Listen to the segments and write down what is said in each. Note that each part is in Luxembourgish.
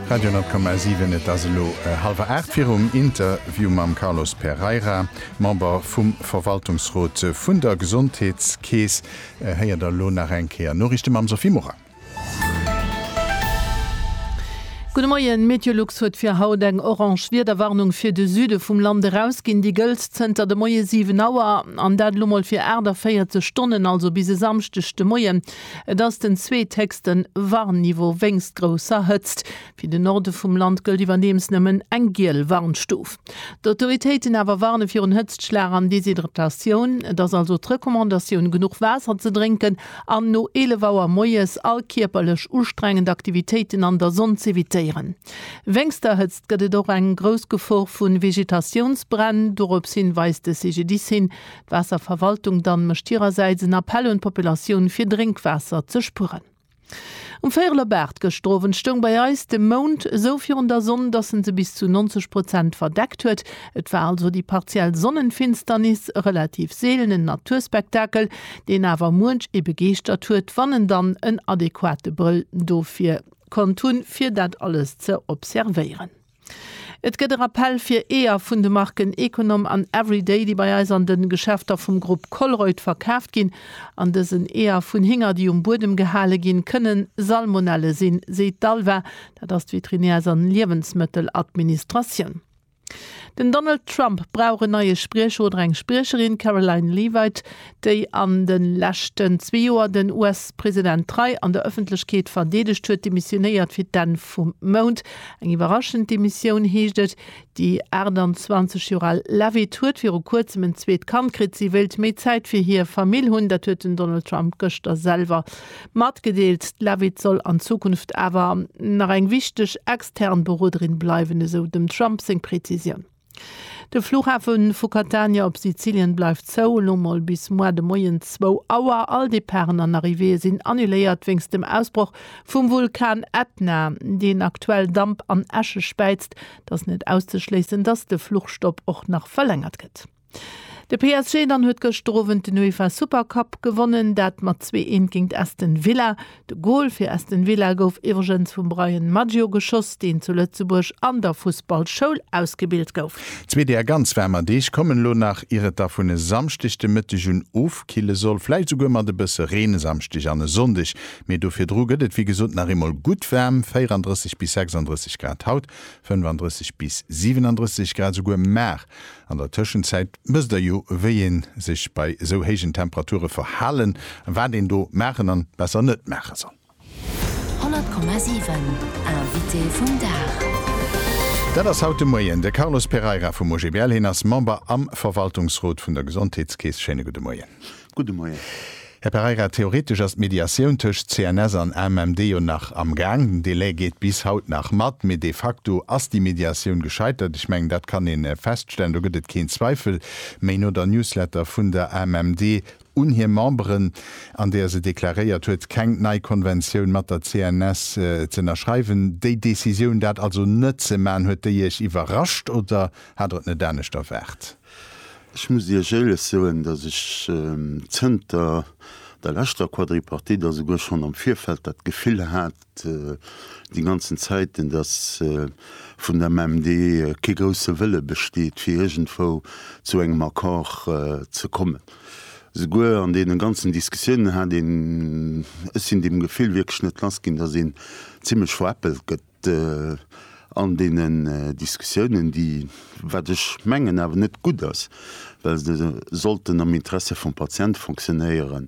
Radio Net Komm Aus Iwen Et ass elo hallwer 8 virum Interview mam Carlos Pereira, Member vum Verwaltungsrot vun der Gesondheetskeess. Héiert der elo nach eng Kéier Noriichte mam Sophie Morang. Gudde Moien, Meteolux huet fir haut eng orange Wiederwarnung fir de Süde vum Land erausginn. Déi gëllt zënter de Moie 7 Auer, an dat elo mol fir 48 Stonnen, also bis e Samschdeg de Moien. Et ass den zweetheechste Warnniveau wéinst grousser Hëtzt. Fir de Norde vum Land gëllt iwwerdeems nëmmen eng giel Warnstuf. D'Autoritéiten awer warne virun Hëtztschlag an Deshydratatioun. Et ass also d'Recommandatioun, genuch Waasser ze drénken an no 11 Auer moies all kierperlech ustrengend Aktivitéiten an der Sonn z'evitéieren. Wéinst der Hëtzt gëtt et och eng grouss Gefor vu Vegetatiounsbränn. Dorops hin weist de CGDIS hin. D'Waasserverwaltung dann mécht hirersäits en Appell un d'Populatioun fir Drénkwaasser ze spueren. Um Véierel op 8 gëschter Owend stoung bei eis de Mound esou virun der Sonn, dass en se bis zu 90 Prozent verdeckt huet. Et war also déi partiell Sonnenfinsternis, e relativ seelenen Naturspektakel, deen awer muench ee begeeschtert huet, wann en dann en adequate Brëll dofir konnt hunn, fir dat alles ze observéieren. Et gëtt e Rappell fir Eeër vun de Marken Econom an Everyday, déi bei eis an de Geschäfter vum Grupp Colruyt verkaaft ginn. An dësen Eeër vun Hinger, déi um Buedem gehale ginn, kënne Salmonelle sinn, seet d'ALVA, dat ass d'Veterinärs an Liewensmëtteladministratioun. Den Donald Trump brauch en neie Spriecher oder eng Spriecherin, Karoline Leavitt. déi an de leschten zwee Joer den US-President trei an der Ëffentlechkeet verdeedegt huet, demissionéiert fir d'Enn vum Mount. Eng iwwerraschend Demissioun, heescht et. Déi 28 Joer al Leavitt huet viru Kuerzem en zweet Kand kritt. Si wéilt méi Zäit fir hir Famill hunn. Dat huet den Donald Trump gëschter selwer matgedeelt. D'Leavitt soll an Zukunft awer nach eng wichteg extern Beroderin bleiwen, esou dem Trump seng Prezisioun. De Flughafe vu Catania op Sizilien bleift zou, elo mol bis moar de Moien zwou Auer. All Departen an Arrivéeë sinn annuléiert wéinst dem Ausbroch vum Vulkan Ätna, deen aktuell Damp an Äsche späizt. Et ass net auszeschléissen, datt de Fluchstopp och nach verlängert gëtt. De PSG dann huet gëschter Owend den UEFA Supercup gewonnen, dat mat zwee Eent géingt Aston Villa. De Gol fir Aston Villa gouf iwwregens vum Bryan Maggio geschoss, deen zu Lëtzebuerg an der Fussballschoul ausgebilt gouf. Zwee deer ganz waarmer Deeg kommen elo nach, ier et da vun e Samschdeg de Mëtteg un ofkille soll, vläicht esouguer mat e bësse Reen e Samschdeg an e Sonndeg. Mee do virdru gëtt et wéi gesot nach eemol gutt waarm, 34 bis 36 Grad haut, 35 bis 37 Grad esouguer mar an der Tëschenzäit. Wësst der jo wéi een sech bei sou héijen Temperature verhalen an wat een do maachen an besser net maache soll. 100,7 Invité vum Dag. Dat ass haut de Moien de Carlos Pereira vum OGBL. Hien ass Member am Verwaltungsrot vun der Gesondheetskeess. Schéine gudde Moien. Gudde Moien. Här Pereira, theoretesch ass d'Mediatioun tëscht CNS an AMMD jo nach am Gaang. Den Delai geet bis haut nach mat, mee de facto ass déi Mediatioun gescheitert. Ech mengen, dat kann ee feststellen, do gëtt et keen Zweifel méi no der Newsletter vun der AMMD un hir Memberen, an där se deklaréiert huet, keng nei Konventioun mat der CNS ze ënnerschreiwen. Déi Décisioun, dat also net ze maachen, huet déi Iech iwwerrascht oder hat Der et net anescht erwaart? Ech muss Iech éierlech soen, datt ech zënter der leschter Quadripartite a souguer schonn am Virfeld dat Gefill hat, déi ganzen Zäiten, datt vun der MMD kee grousse Wëlle besteet, fir iergendwou zu engem Accord ze kommen. Souguer an deene ganzen Diskussiounen hat een, ech sinn deem Gefill wierklech net lass ginn, datt een zimlech veräppelt gëtt. an deenen Diskussiounen, déi, wat ech mengen, awer net gutt ass, well se sollten am Interesse vum Patient fonctionnéieren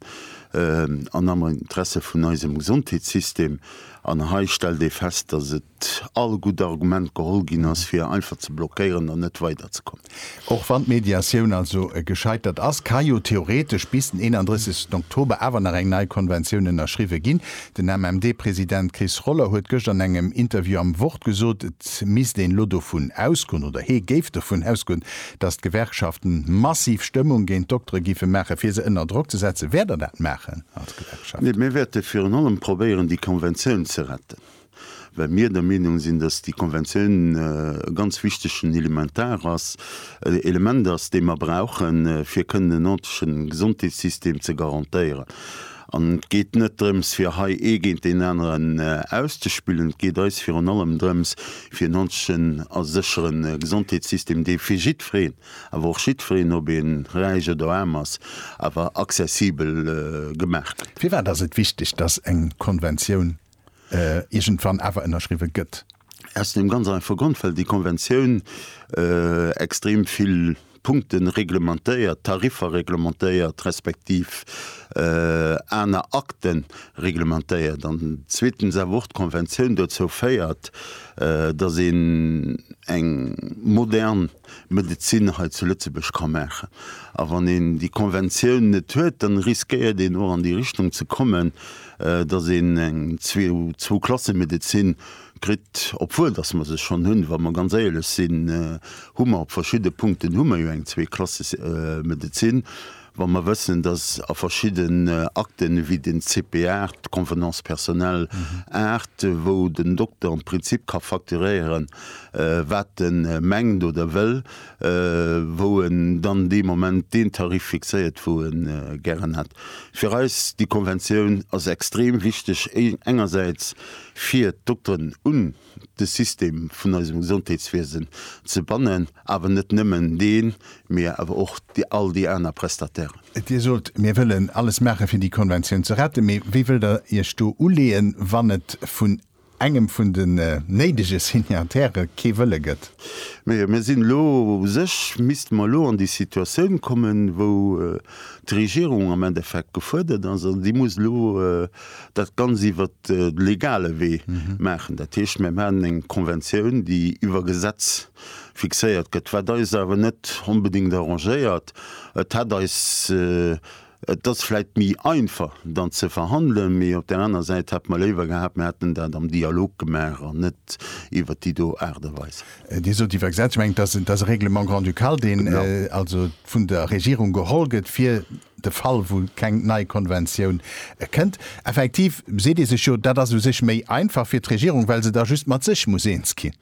an am Interesse vun eisem Gesondheetssystem. An hei stellt ee fest, dass et all gutt Argument geholl ginn ass, fir einfach ze blockéieren an net weiderzekommen. Och wann d'Mediatioun also gescheitert ass, ka jo theoretesch bis den 31 Oktober awer nach eng nei Konventioun ënnerschriwwe ginn. Den MMD-President Chris Roller huet gëscht an engem Interview am Wort gesot, et misst een elo dovun ausgoen, oder hee géif dovun ausgoen, datt d'Gewerkschaften massiv Stëmmung géint d'Doktere géife maachen, fir se ënner Drock ze setzen. Wäert Der dat maachen als Gewerkschaft? Mir wäerte virun allem probéieren, déi Konventioun ze retten. well mir der Meenung sinn, dass déi Konventioun e ganz wichtegen Elementar ass, Element ass, dee mer brauchen, fir kënnen en ordentlechen Gesondheetssystem ze garantéieren. An et geet net drëms, fir hei ee géint deen aneren auszespillen. Et geet eis virun allem drëms, fir en ordentlechen a sécheren Gesondheetssystem, dee fir jiddwereen, awer och jiddwereen, ob ee räich oder aarm ass, awer accessibel gemaach gëtt. Firwat ass et wichteg, dass eng Konventioun iergendwann awer ënnerschriwwe gëtt. Aus deem ganz einfache Grond, well déi Konventioun extrem vill Punkte reglementéiert, Tariffer reglementéiert, respektiv aner Akte reglementéiert, an zweetens awer och d'Konventioun dozou féiert, dass een eng modern Medezin hei zu Lëtzebuerg ka maachen. A wann een déi Konventioun net huet, dann riskéiert een och an déi Richtung ze kommen, dass een eng Zwou-Klasse-Medezin kritt, obwuel dass mer se schonn hunn. Wa mer ganz éierlech sinn, hu mer op verschidde Punkten hu mer jo eng Zwee-Klasse-Medezin. Wa mer wëssen, dass a verschidden Akten, wéi den CP 8, d'Convenance personnelle 8, wou den Dokter am Prinzip ka facturéieren, wat e mengt oder wëll, wou en dann dee Moment deen Tarif fixéiert, wou e gären hätt. Fir eis, déi Konventioun ass extrem wichteg, engersäits fir d'Dokteren un. de System vun eisem Gesondheetswiesen ze bannen, awer net nëmmen deen, mee awer och all déi aner Prestatairen. Dir sot, mir wëllen alles maache fir déi Konventioun ze retten, mee wéi wëllt Der Iech do uleeën, wann et vun engem vun den néidege Signatairë kee Wëlle gëtt? Mir sinn elo, u sech misste mer elo an déi Situatioun kommen, wou, d'Regierung am Endeffekt gefuerdert ass an déi muss elo dat ganz iwwer de legale Wee maachen. Dat heescht, mir maachen eng Konventioun, déi iwwer Gesetz fixéiert gëtt, wat eis awer net onbedéngt arrangéiert. Et hätt eis, et ass vläicht méi einfach dann ze verhandelen, mee op där aner Säit hätte mer léiwer gehat, mir hätten dat am Dialog gemaach an net iwwer déi do Aart a Weis. Dir sot iwwer Gesetz, ech mengen, et ass, et ass e Règlement grand-ducal, deen also vun der Regierung geholl gëtt fir de Fall, wou keng nei Konventioun kënnt. Effektiv seet Dir sech jo, dat ass u sech méi einfach fir d'Regierung, well se da just mat sech muss eens ginn.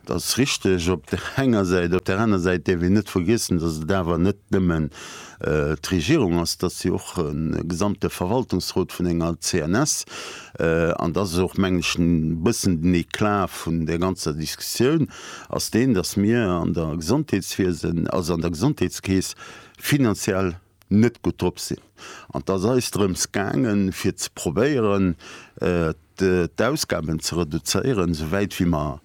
Dat ass richteg op där enger Säit. Op där aner Säit däerf een net vergiessen, datt et awer net nëmmen d'Regierung ass, dass se och e gesamte Verwaltungsrot vun enger CNS, an dass ass och, mengen ech, e bëssen den Eclat vun där ganzer Diskussioun, ass deen, dass mir an der Gesondheetswiesen, also an der Gesondheetskeess finanziell net gutt drop sinn. An et ass eis drëms gaangen, fir ze probéieren, d'Ausgaben ze reduzéieren, esou wäit wéi mer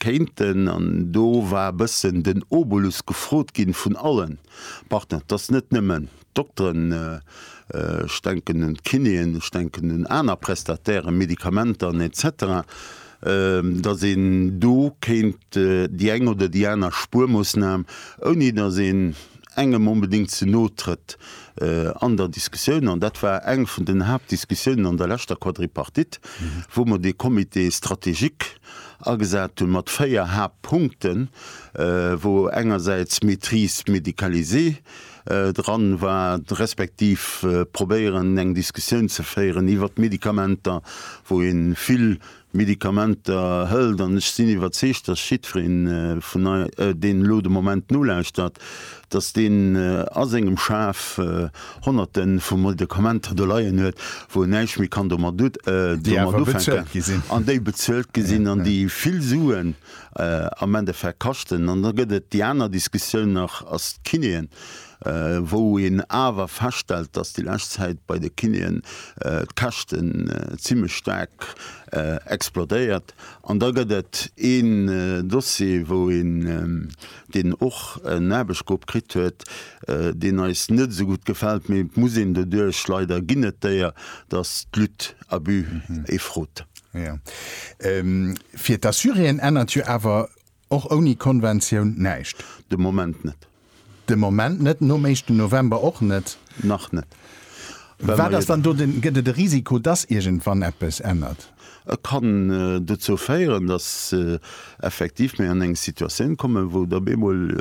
kéinten. An do war e bëssen den Obolus gefrot gi vun alle Partner, dass net nëmmen d'Dokteren, ech denken un d'Kinéen, ech denken un aner Prestatairen, Medikamenter an et cetera, dass een do kéint déi eng oder déi aner Spuermoosnam, ouni dass een engem onbedéngt ze no trëtt an der Diskussioun. An dat war eng vun den Haaptdiskussiounen an der leschter Quadripartite, wou mer dee Comité stratégique agesat hu mat véier Haaptpunkten, wou engersäits Maîtrise médicalisée dran war, respektiv probéieren, eng Diskussioun ze féieren iwwert d'Medikamenter, wou ee vill Medikamenter hëlt, an ech sinn iwwerzeegt, dass jiddwereen vun eis, deen elo de Moment nolauschtert, dass deen a sengem Schaf Honnerte vu Medikamenter do leien huet, wou en näischt méi kann domat ufänken, an déi bezuelt gi sinn an déi vill Suen am Endeffekt kaschten. An da gëtt et déi aner Diskussioun nach, ass d'Kinéen wou een awer feststellt, dass déi lescht Zäit bei de Kinéen d'Käschten zimmlech staark explodéiert. An da gëtt et een Dossier, wou een, deen och en Aarbechtsgrupp kritt huet, deen eis net esou gutt gefält, mee et muss een doduerch. Leider ginn et déier, dass d'Lutte à but ee frot. Jo, fir d'Assuréen ännert jo awer Och ouni Konventioun näischt? De Moment net. De Moment net, nom éischten November och net? Nach net. Wat ass dann do de, gëtt et e Risiko, dass iergendwann eppes ännert? Et kann dozou féieren, dass effektiv mir an eng Situatioun kommen, wou et op eemol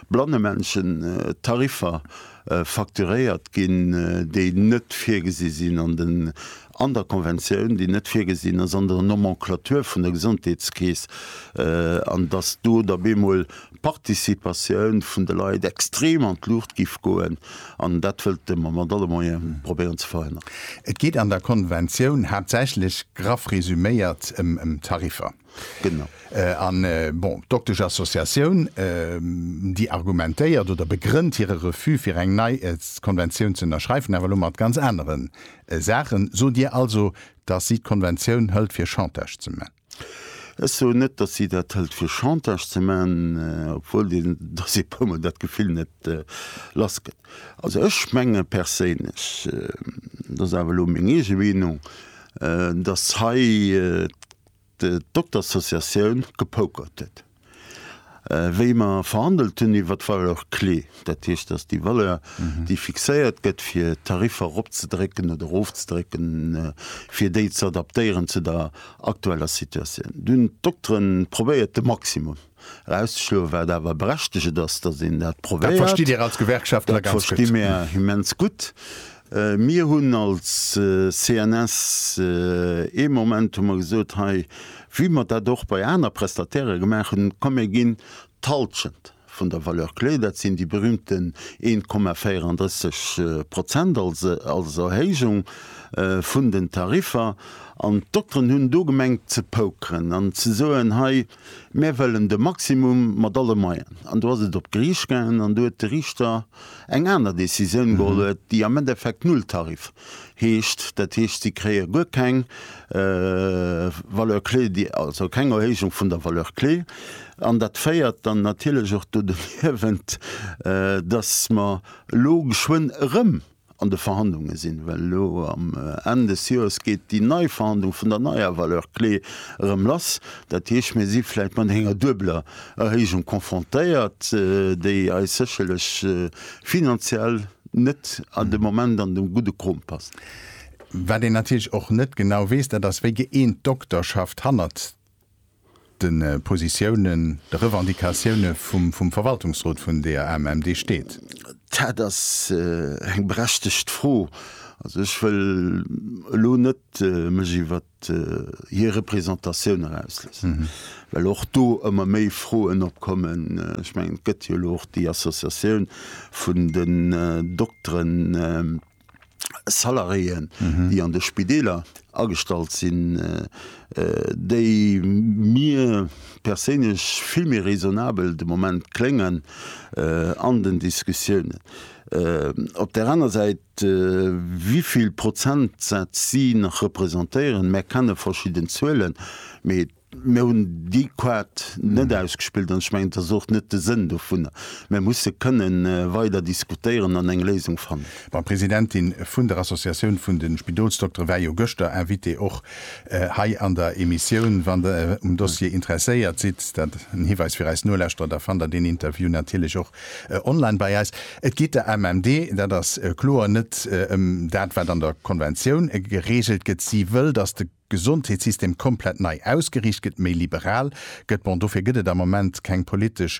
blanne Menschen Tariffer facturéiert ginn, déi net virgesi sinn An der Konventioun, déi net virgesinn ass an der Nomenclature vun der Gesondheetskeess, an datt do da bemol d'Participatioun vun de Leit extrem an d'Luucht géif goen, an dat wëlte mer mat alle Moyene probéieren ze verhënneren. Et geet an der Konventioun haaptsächlech, graff resuméiert, ëm Tariffer. Genau. An, bon, d'Doktesch-Associatioun, déi argumentéiert oder begrënnt hire Refus fir eng nei Konventioun ze ënnerschreifen awer elo mat ganz anere Saachen. Sot Dir also, datt si d'Konventioun hëlt fir Chantage ze man? Ech soen net, datt si dat hëlt fir Chantage ze man, obwuel deen Dossier e puer mol dat Gefill net lass gëtt. Also ech menge perséinlech, dat ass awer elo meng eege Meenung, datt hei d'Doktersassociatioun gepokert huet, wéi mer verhandelt hunn iwwer d'Valeur clé, dat heescht, datt déi Valeur, déi fixéiert gëtt, fir d'Tariffer eropzedrécken oder erofzedrécken, fir déi ze adaptéieren zu der aktueller Situatioun. Do hunn d'Dokteren probéiert, de Maximum. Erauszeschloe wat awer berechteget ass, datt een dat probéiert. Dat verstitt Dir als Gewerkschaftler ganz gutt. Dat versti mir immens gutt. Mir hunn als CNS ee Moment hu mer gesot, hei wéi mer dat och bei aner Prestatairë gemaach hunn, komm mir ginn d'Halschent vun der Valeur clé, dat sinn déi berühmten 1,34 Prozent als Erhéijung vun den Tariffer. An d'Dokteren hunn do gemengt ze pokeren an ze soen, hei, Mär wëllen de Maximum mat alle Moyen. An do ass et op d'Geriicht gaangen an do huet de Riichter eng aner Decisioun geholl huet, déi am Endeffekt Nulltarif heescht. Dat heescht, si kréie guer keng Valeur clé, also keng Erhéijung vun der Valeur clé. An dat féiert dann natierlech och do doniewent, dass mer elo geschwënn erëm an de Verhandlunge sinn, well elo am Enn des Joers geet déi nei Verhandlung vun der neier Valeur clé erëm lass. Dat heescht, mir si vläicht mat enger duebeler Erhéijung konfrontéiert, déi eis sécherlech finanziell net an de Moment an de gudde Krom passt. Wat een natierlech och net genau weess, dat ass, wéi geeent d'Dokterschaft hannert de Positiounen, de Revendicatioune vum Verwaltungsrot vun der AMMD steet. Dat ass eng berechtegt Fro. Also ech wëll elo net mech iwwer hir Représentatioun erausloossen, well och do ëmmer méi Froen opkommen. Ech mengen, et gëtt jo elo och déi Associatioun vun den Dokteren. Salariéen, déi an de Spideeler agestallt sinn, déi mir perséinlech vill méi raisonnabel de Moment kléngen an den Diskussiounen. Op där aner Säit, wéi vill Prozentsätz si nach representéieren, mär kenne verschidden Zuelen, mee. Mir hunn déi Kaart net ausgespillt an ech mengen, et ass och net de Sënn dovunner. Mir musse kënne weider diskutéieren an eng Léisung fannen. Mme Presidentin vun der Associatioun vun de Spidolsdoktere war jo gëschter Invitée och hei an der Emissioun. Wann Der um Dossier interesséiert sidd, dat en Hiweis fir eis Nolauschterer, da fannt Der deen Interview natierlech och online bei eis. Et geet der MMD, dat ass kloer, net ëm dat, wat an der Konventioun gereegelt gëtt. Si wëll, datt de. Gesondheetssystem komplett nei ausgeriicht gëtt, méi liberal gëtt. Bon, dofir gëtt et am Moment keng politesch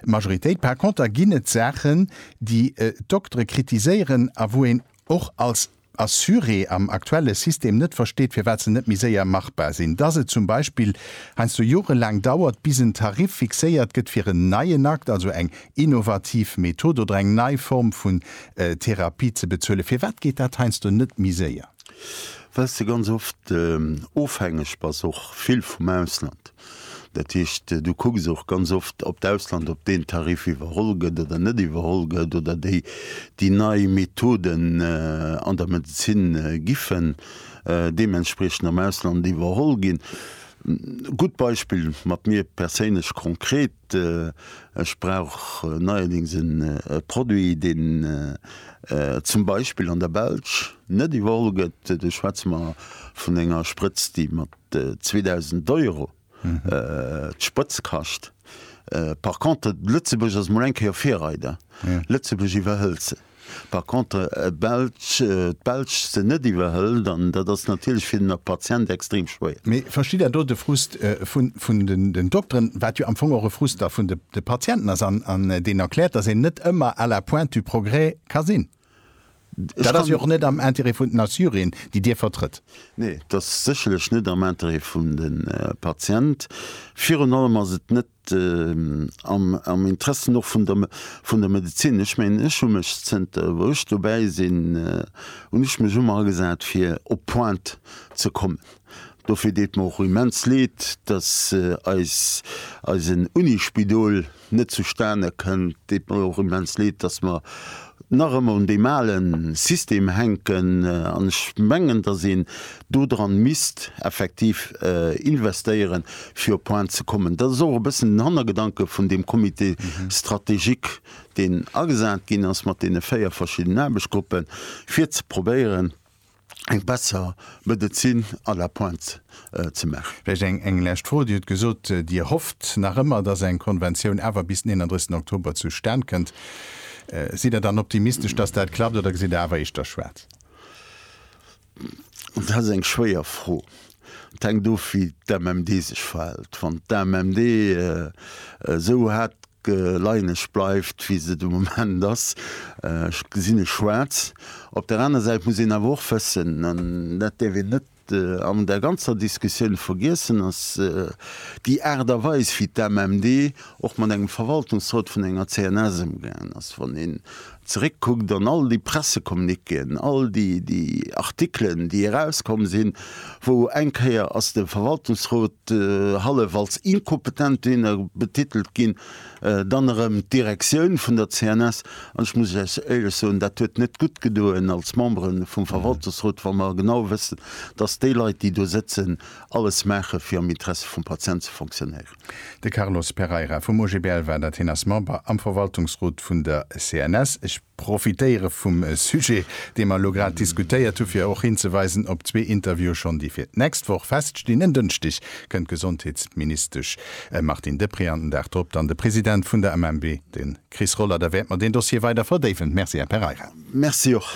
Majoritéit. Par konter ginn et Saachen, déi d'Doktere kritiséieren a wou een och als Assuré am aktuelle System net versteet, firwat se net méi séier machbar sinn. Dass et zum Beispill heiansdo jorelaang dauert, bis en Tarif fixéiert gëtt fir en neien Akt, also eng innovativ Method oder eng nei Form vun Therapie ze bezuelen, firwat geet dat heiansdo net méi séier? well s de ganz oft ofhängeg bass och vill vum Ausland. Dat heescht, du kucks och ganz oft, ob d'Ausland, ob deen Tarif iwwerholl gëtt oder net iwwerholl gëtt oder déi déi nei Methoden an der Medezin giffen deementspriechend am Ausland iwwerholl ginn. Gutt Beispill mat mir perséinlech konkret, Ech brauch neierdings e Produit, deen zum Beispill an der Belsch net iwwerholl gëtt. Do schwätze mer vun enger Sprëtz, déi mat 2.000 Euro d'Sprëtz kascht. Par contre, Lëtzebuerg ass mol eng Kéier Virreider. Lëtzebuerg iwwerhëlt se. Par contre d'Belsch, d'Belsch se net iwwerhëlt, an dat ass natierlech fir den Patient extrem schwéier. Mee ech versti da do de Frust vun den Dokteren, wat jo am Fong och e Frust da vun de Patienten ass, an deen erkläert, datt een net ëmmer à la pointe du progrès ka sinn. Dat ass jo och net am Intérêt vun den Assuréen, déi Dir vertrëtt. Nee, dat ass sécherlech net am Intérêt vun de Patient. Virun allem ass et net am Interessen och vun der, vun der Medezin. Ech mengen, ech hu mech zënter wou ech dobäi sinn, hunn ech mech ëmmer agesat fir op d'Pointe ze kommen. Dofir deet mer och immens leed, dass eis, eisen Unispidol net zustane kënnt. Deet mer och immens leed, dass mer nach ëmmer un deem ale System hänken. An ech mengen, dass een do dran misst effektiv investéieren, fir op Pointe ze kommen. Dat ass och e bëssen den Hannergedanke vun deem Comité stratégique, deen agesat ginn ass mat deene véier verschiddenen Aarbechtgruppen, fir ze probéieren, eng besser Medezin à la pointe ze maachen. Vläicht eng lescht Fro. Dir hutt gesot, Dir hofft nach ëmmer, dass eng Konventioun awer bis den 31 Oktober zustan kënnt. Sidd Der dann optimistesch, dass dat klappt, oder gesitt Der awer éischter schwaarz? Dat ass eng schwéier Fro. Dat hänkt of, wéi d'MMD sech verhält. Wann d'MMD esou haart geleieneg bleift, wéi se de Moment ass, gesinn ech schwaarz. Op der aner Säit muss een awer och wëssen, an dat däerf een net an där ganzer Diskussioun vergiessen, dass déi Aart a Weis, wéi d'MMD och mat engem Verwaltungsrot vun enger CNS ëmgaangen ass, wann een zeréckkuckt an all déi Pressecommuniquéen, all déi Artikelen, déi erauskomm sinn, wou eng Kéier ass de Verwaltungsrot hallef als inkompetent dene betitelt ginn, dann erëm d'Direktioun vun der CNS. An ech muss lech éierlech soen, dat huet net gutt gedoen als Membere vum Verwaltungsrot, wa mer genau wëssen, dass déi Leit, déi do sëtzen, alles maache fir am Interesse vum Patient ze fonctionnéieren. De Carlos Pereira vum OGBL war dat. Hien ass Member am Verwaltungsrot vun der CNS. Ech profitéiere vum Sujet, dee mer elo grad diskutéiert hu fir och hinzeweisen op zwee Interviewe schonn, déi fir d'nächst Woch feststinn. En Dënschdeg kënnt d'Gesondheetsministesch Martine Deprez an den Dag drop dann de President vun der MMB, de Chris Roller. Da wäerte mer deen Dossier weider verdéiwen. Merci, Här Pereira. Merci och.